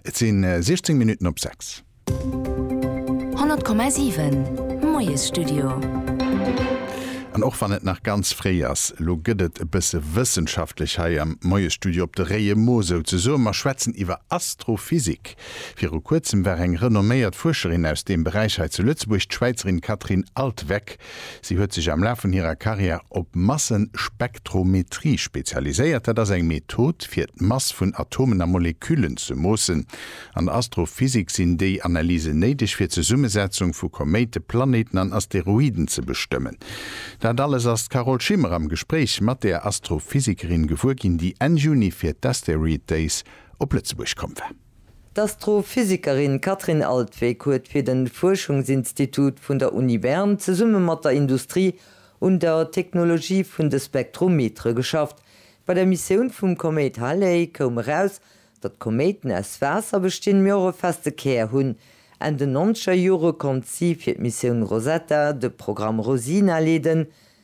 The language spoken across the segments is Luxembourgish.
Et si 16 Minutten op 6. 100,7, Moiesstudio. An och wann et nach ganz fréi ass, elo gëtt et e bësse wëssenschaftlech hei am Moiesstudio op de réie Mo souzesoen. Mer schwätzen iwwer Astrophysik. Viru kuerzem war eng renomméiert Fuerscherin aus deem Beräich hei zu Lëtzebuerg, d'Schwäizerin Catherine Altweck. Si huet sech am Laf vun hirer Karriär op Massenspektrometrie spezialiséiert. Dat ass eng Method, fir d'Mass vun Atomen a Moleküllen ze moossen. An der Astrophysik sinn déi Analysen néideg, fir d'Zesummesetzung vu Koméite, Planéiten an Asteroiden ze bestëmmen. Dat alles ass d'Carole Schimmer am Gespréich mat där Astrophysikerin gewuer ginn, déi Enn Juni fir d'Asteroid Days op Lëtzebuerg komm war. D'Astrophysikerin Kathrin Altwegg huet fir den Fuerschungsinstitut vun der Uni Bern zesumme mat der Industrie un der Technologie vun de Spektrometere geschafft. Bei der Missioun vum Koméit Halley koum eraus, datt Koméiten aus Waasser bestinn, mee och e feste Kär hunn. Enn den nonzeger Jore konnt si fir d'Missioun Rosetta de Programm Rosina leeden.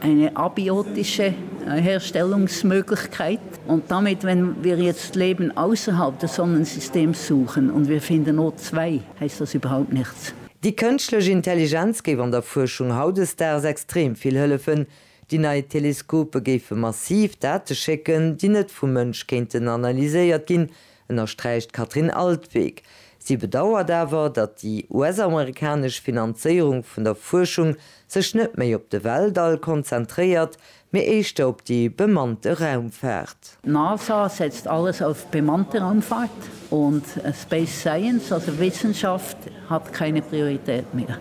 Eine abiotische Herstellungsmöglichkeit und damit, wenn wir jetzt Leben ausserhalb des Sonnensystems suchen und wir finden O2, heißt das überhaupt nichts. Déi kënschtlech Intelligenz géif an der Fuerschung hautdesdaags extrem vill hëllefen. Déi nei Teleskope géife massiv Date schécken, déi net vum Mënsch kéinten analyséiert ginn, ënnersträicht d'Katrin Altwegh. Si bedauert awer, datt déi US-amerikanesch Finanzéierung vun der Fuerschung sech net méi op de Weltall konzentréiert, mee éischter op déi bemannte Raumfaart. D'NASA setzt alles auf bemannte Raumfahrt und Space Science, also Wissenschaft, Hat keine Priorität mehr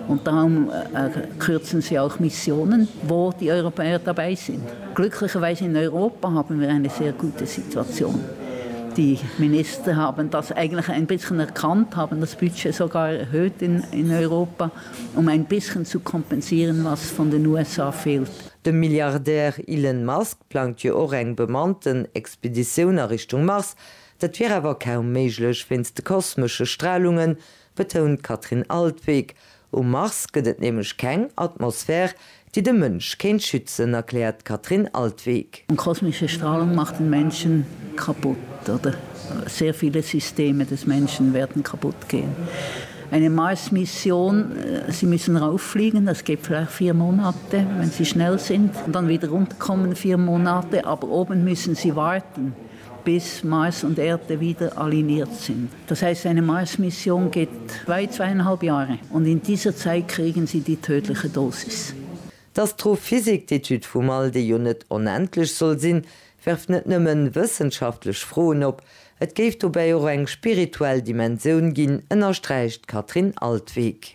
und darum kürzen sie auch Missionen, wo die Europäer dabei sind. Glücklicherweise in Europa haben wir eine sehr gute Situation. Die Minister haben das eigentlich ein bisschen erkannt, haben das Budget sogar erhöht in Europa, um ein bisschen zu kompensieren, was von den USA fehlt. De Milliardär Elon Musk plangt jo och eng bemannten Expeditioun a Richtung Mars. Dat wier awer kaum méiglech wéinst de kosmesche Stralungen, betount d'Katrin Altwegg. Um Mars gëtt et nämlech keng Atmosphär, déi de Mënsch kéint schützen, erkläert d'Katrin Altwegg. Kosmesche Strahlung macht den Menschen kaputt oder sehr viele Systeme des Menschen werden kaputt gehen. Eine Marsmission, sie müssen rauffliegen, das geht vielleicht vier Monate, wenn sie schnell sind, und dann wieder runterkommen, vier Monate, aber oben müssen sie warten. bis Mars und Erde wieder aligniert sind. Das heißt, seine Mars-Mission geht weit zweieinhalb Jahre und in dieser Zeit kriegen sie die tödliche Dosis. D'Astrophysik, d'Etüd vum All, déi jo net onendlech soll sinn, werft net nëmme wëssenschaftlech Froen op, et géif dobäi och eng spirituell Dimensioun ginn, ënnersträicht d'Katrin Altweg.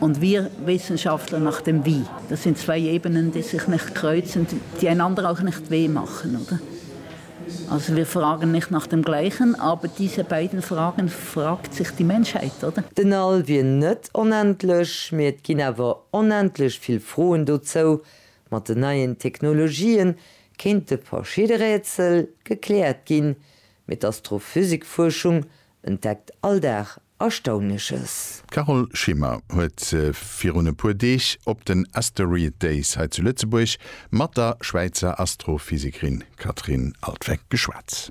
Und wir Wissenschaftler nach dem Wie. Das sind zwei Ebenen, die sich nicht kreuzen, die einander auch nicht weh machen, oder? Also wir fragen nicht nach dem Gleichen, aber diese beiden Fragen fragt sich die Menschheit, oder? Den All wier net onendlech, mee et ginn awer onendlech vill Froen dozou. Mat den neien Technologië kéinte verschidde Rätsel gekläert ginn, mee d'Astrophysikfuerschung entdeckt all Dag Erstaunleches. D'Carole Schimmer huet virun e puer Deeg op den Asteroid Days hei zu Lëtzebuerg mat der Schwäizer Astrophysekerin Catherine Altwegg geschwat.